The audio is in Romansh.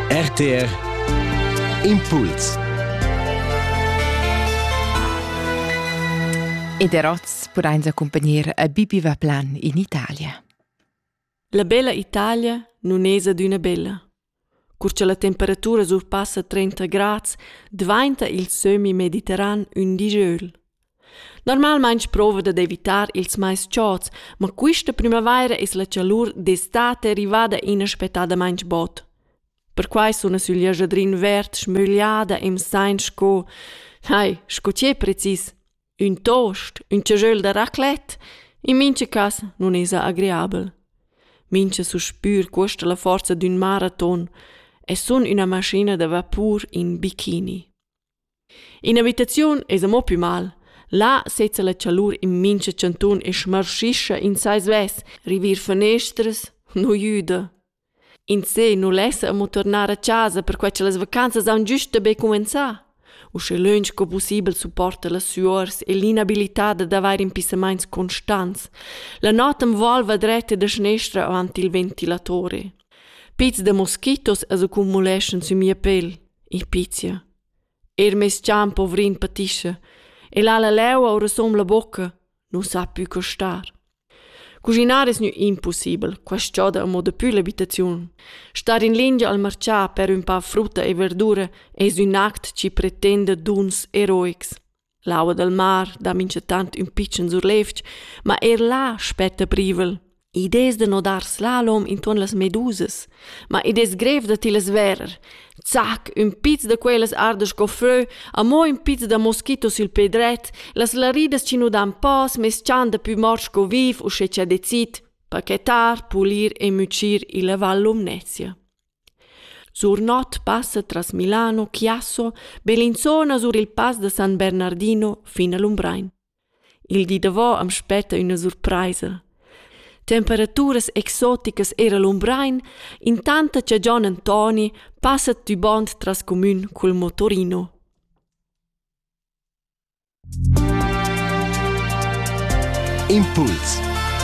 RTR Impuls Ed Eroz pudain accumpagnir a Bibi Vaplan in Italia. La bella Italia nun es adüna bella. Cur cha la temperatura surpassa 30 grads, dvainta il sömmi mediterran ün digiöl. Normalmein sprova dad evitar ils mais chauds, ma quista primavaira es la chalur d'estate rivada inaspettadamaing bod. Perquai suna sül jajadrin verd schmögliada e'm sain sco, hai, sco tschè precis, ün toast, ün chajöl da raclette, in mincha cas nun esa agreabel. Mincha suspür cuosta la forza d'ün maraton e sun üna maschina da vapur in bikini. In'abitaziun esa mo pü mal. Là sezza la chalur in mincha chantun e schmarschischa in sai svess, rivir fanestras nu güda. In se nu lessa amo turnar a chasa perquai cha las vacanzas haun güsta be cumanzà. Uschè lönch co pussibel supporta las süuors e l'inabilità d'avair impissamaints constants. La not am volva dretta da schnestra avanti il ventilatore. Pizs da moskitos as accumuleschan sü mia pel. Il pizia. Er mes gian povrin patischa e l'ha la leua orasum la bocca, non sa pü co star. Cuginar es gnü impussibel, quaist choda amo dapü l'abitaziun. Star in lingia al marchà per ün pa frutta e verdura es ün act chi pretenda duns eroics. L'aua dal mar dà minchatant ün pitschen surlevg, ma eir là spetta privel. Id es da nodar slalom intuorn las medusas, ma id es grev da tillas verer. Zac, ün piz da quellas arda sco frö, amo ün piz da moschito sül pe dret, las laridas chi nu dan pas meschan dapü mort sco viv usche cha decid, pachetar, pulir e mütschir illa Val Lumnezia. Sur not passa tras Milano, Chiasso, Bellinzona sur il Pass da San Bernardino fin a Lumbrein. Il di davò am spetta üna surpraisa. Temperaturas exoticas era Lumbrein, intanta cha Gian Antoni passa tübond tras cumün cul motorino. Impuls